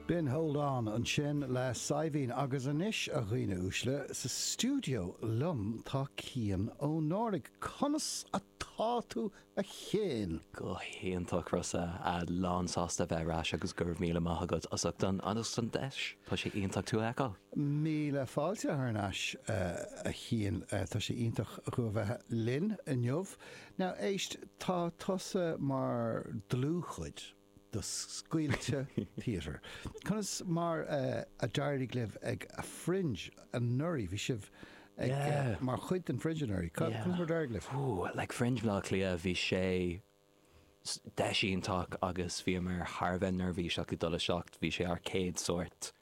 B'in Hold On ansin le Saidhbhín agus anois, a dhaoine uaisle, sa stiúideo liom tá Cian Ó Náraigh. Conas atá tú a Chiain? Go hiontach Rossa, lán sásta a bheith ar ais agus go raibh míle maith agat as ucht an deis, tá sé iontach tú a fheiceáil. Míle fáilte thar n-ais a Chiain, tá sé iontach thú a bheith linn inniu. Now éist, tá tusa mar dlúthchuid. de Scaoilte Theatre. Conas mar a d'éirigh libh ag Fringe anuraidh? Bhí sibh ag, mar chuid den Fringe anuraidh. Conas mar a d'éirigh libh? Like Fringe Bhaile Átha Cliath, bhí sé deis iontach agus bhíomar thar a bheith neirbhíseach ag dul isteach. Bhí sé ár gcéad sórt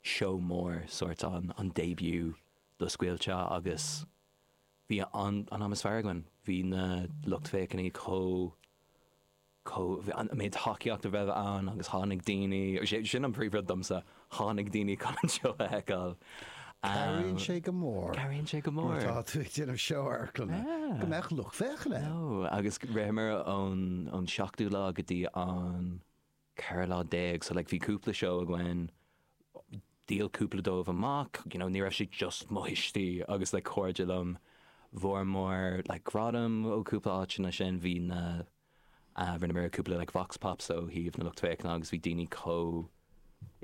seó mór, sórt an an début do Scaoilte agus bhí an-am is fearr againn. Bhí na lucht féachana chomh. Bhí an méid tacaíochta a raibh ann agus tháinig daoine, sin an príomh rud domsa, tháinig daoine chun an seó a fheiceáil. Cabhraíonn sé go mór. Cabhraíonn sé go mór. Nuair atá tú ag déanamh seó amharclainne go mbeadh lucht féachana ann. Nó agus ritheamar ón seachtú lá go dtí an ceithre lá déag, so like bhí cúpla seó againn, dhíol cúpla dóibh amach, you know, ní raibh sé just mo thuistí agus like cairde liom, fuaireamar like gradaim ó cúpla áiteanna sin, bhí na. Rinneamar cúpla like vox pops ó thaobh na lucht féachana agus bhí daoine chomh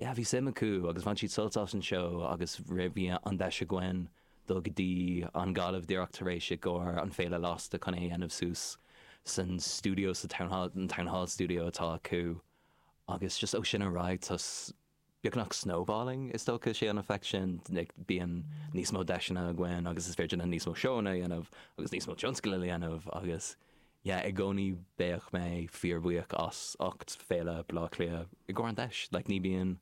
yeah bhí suim acu agus bhain siad sult as an seó agus raibh bhí an deis againn dul go dtí an Ghaillimh díreach tar éis i gcomhair an Féile Lasta chun é a dhéanamh suas san stiúideo sa town hall an town hall studio atá acu agus just ó sin ar aghaidh just beagnach snowballing is dócha, like an effect sin, like bíonn níos mó deiseanna againn agus is féidir linn níos mó seóanna a dhéanamh agus níos mó tionscail a dhéanamh agus yeah i gcónaí beidh mé fíorbhuíoch as ucht Féile Baile Átha Cliath i gcomhair an deis, like ní bíonn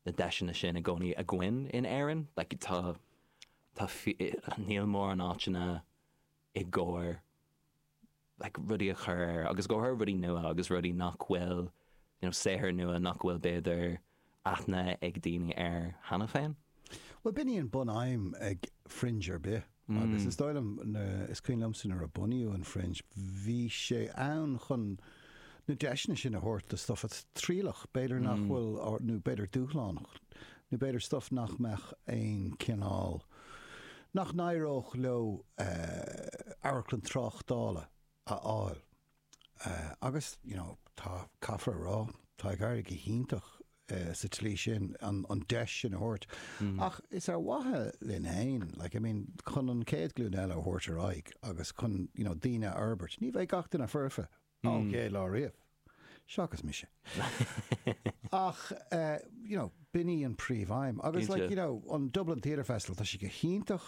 na deiseanna sin i gcónaí againn in Éirinn, like tá tá níl mórán áiteanna. i gcomhair like rudaí a chur ar agus i gcomhair rudaí nua agus rudaí nach bhfuil you know saothair nua nach bhfuil b'fhéidir aithne ag daoine air cheana féin. Bhuel b'in í an bunaidhm ag Fringe ar bith agus is dóigh liom na, is cuimhin liomsa nuair a bunaíodh an Fringe bhí sé ann chun na deiseanna sin a thabhairt do stuff trialach, b'fhéidir nach bhfuil nó b'fhéidir dúshlánach nó b'fhéidir stuff nach mbeadh aon cineál nach n-éireodh leo amharclann tráchtála a fháil agus you know tá, caithfear a rá, tá ag éirí go hiontach sa tslí sin, an deis sin a thabhairt ach is ar mhaithe linn féin like I mean chun an chéad ghlúin eile a thabhairt ar aghaidh agus chun you know daoine a fhorbairt. Ní bheidh gach duine foirfe, Á, ok, lá riamh. Seachas mise. Ach, eh, you know, b'in í an phríomhaidhm. Agus, like, Cinnte. you know, an Dublin Theatre Festival, tá sé go hiontach